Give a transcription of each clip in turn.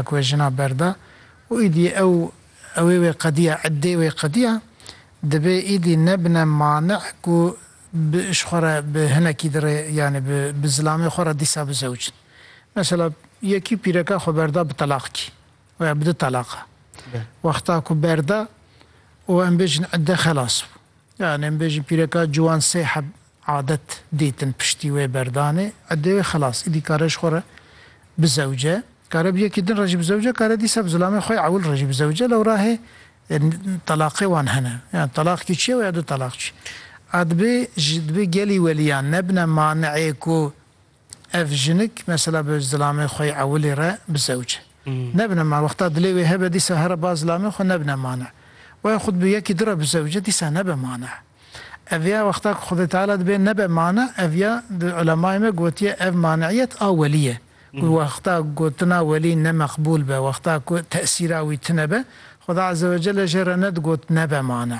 Ku wê jina berda û îdî ew ewê wê qediya, eddê wê qediya, dibê îdî nebine mane ku bi ji xwe re bi hinekî dirê yanî bi bi zilamê xwe re dîsa bizewicin. Mesela yekî pîreka xwe berda bi telaq kî û ya bi du teleqa. Wexta ku berda û em bêjin edde xelas bû. Yanî em bêjin pîreka ciwan sê heb Adet dîtin piştî wê berdanê idê wê xilas. Îdî kare ji xwe re bizewce. Kare bi yekî din re jî bizewce, kare dîsa bi zilamê xwe ewil re jî bizewce. Lewra hê telaqê wan hene. Yan telaq kî çi ye û ya du telaq çi ye? A dibê ji dibê gelî welîyan nebine maneê ku Ev jinik mesela bi zilamê xwe yê ewilê re bi zewc e. Nebine ma wexta dilê wê hebe dîsa here ba zilamê xwe nebine mane. Waya xwe dibe yekî di re bi zewc e dîsa nebe mane. Ev ya wexta ku Xwedê Teala dibe nebe mane ev ya di ulemayê me gotiye ev maneiyet a welî ye. Ku wexta gotina welî ne meqbûl be, wexta ku tesîra wî tune be, Xweda Ezzewecelle jê re ne digot nebe mane.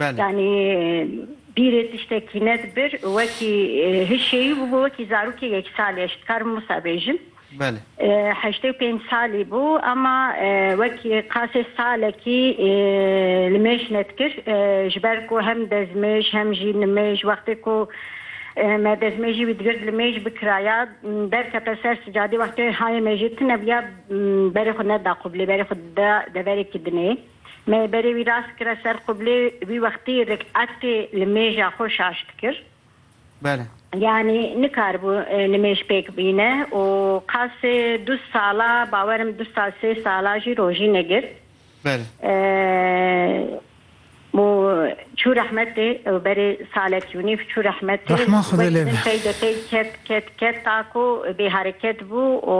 Yanî bîrê tiştekî nedibir û wekî hişêyî bûbû wekî zarokê yek salî eş dikarim wisa bêjim. Heştê û pênc salî bû ema wekî qasê salekî li mêj nedikir ji ber ku hem dezmêj hem jî nimêj wextê ku me dezmêjî wî digird li mêj bikiraya derkete ser sicadî wextê hayê mêjê tune bûya berê xwe neda qûbilê berê xwe dida deverekî dinê. Me berê wî rast kire ser qiblê, wî wextî riketê li mêja xwe şaş dikir. Bele. Yanî nikaribû nimêj pêk bîne û qasê du sala bawer im du sal sê sala jî rojî negir. Bele. Û çû rehmetê ew berê salekî û nîv çû rehmetê. Rehma Xwedê lê be. Pey de pey ket ket ket ta ku bêhereket bû û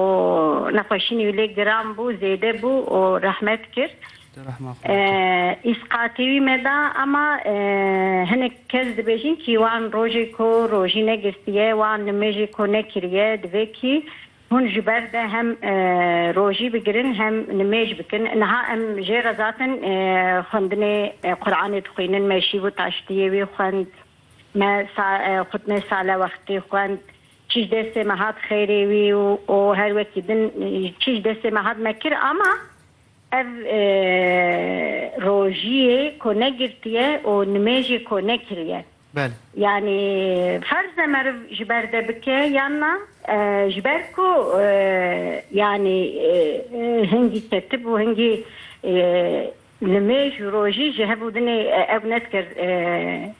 nexweşînî wî lê giran bû zêde bû û rehmet. kir. Îsqatî wî me da ema hinek kes dibêjin kî wan rojê ku rojî negistiye wan nimêjê ku nekiriye divê kî hûn ji ber de hem rojî bigirin hem nimêj bikin. Niha em jê rezatin xwendinê Quranê dixwînin me şîv û taştiyê wî xwend me xwitnê sale wextî xwend Çi ji destê me hat xêrê wî û her wekî din çi ji destê me hat me kir ama ev rojiyê ko negirtiye û nimêjê ko nekiriye yanî ferz e meriv ji ber de bike yan na ji ber ku yanî hingî ketib û hingî nimêj û rojî ji hev û dinê ew ne dikir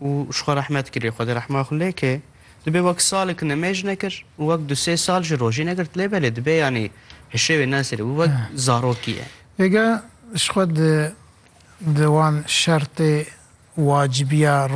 û ji xwe rehmet kir, lê Xwedê rehma xwe lê ke. Dibê wek salek nimêj nekir û wek du sê sal jî rojî negirt lê belê dibê yanî hişê wê nesêre wî wek zarokî ye. Êga ji xwe di di wan şertê wacibîya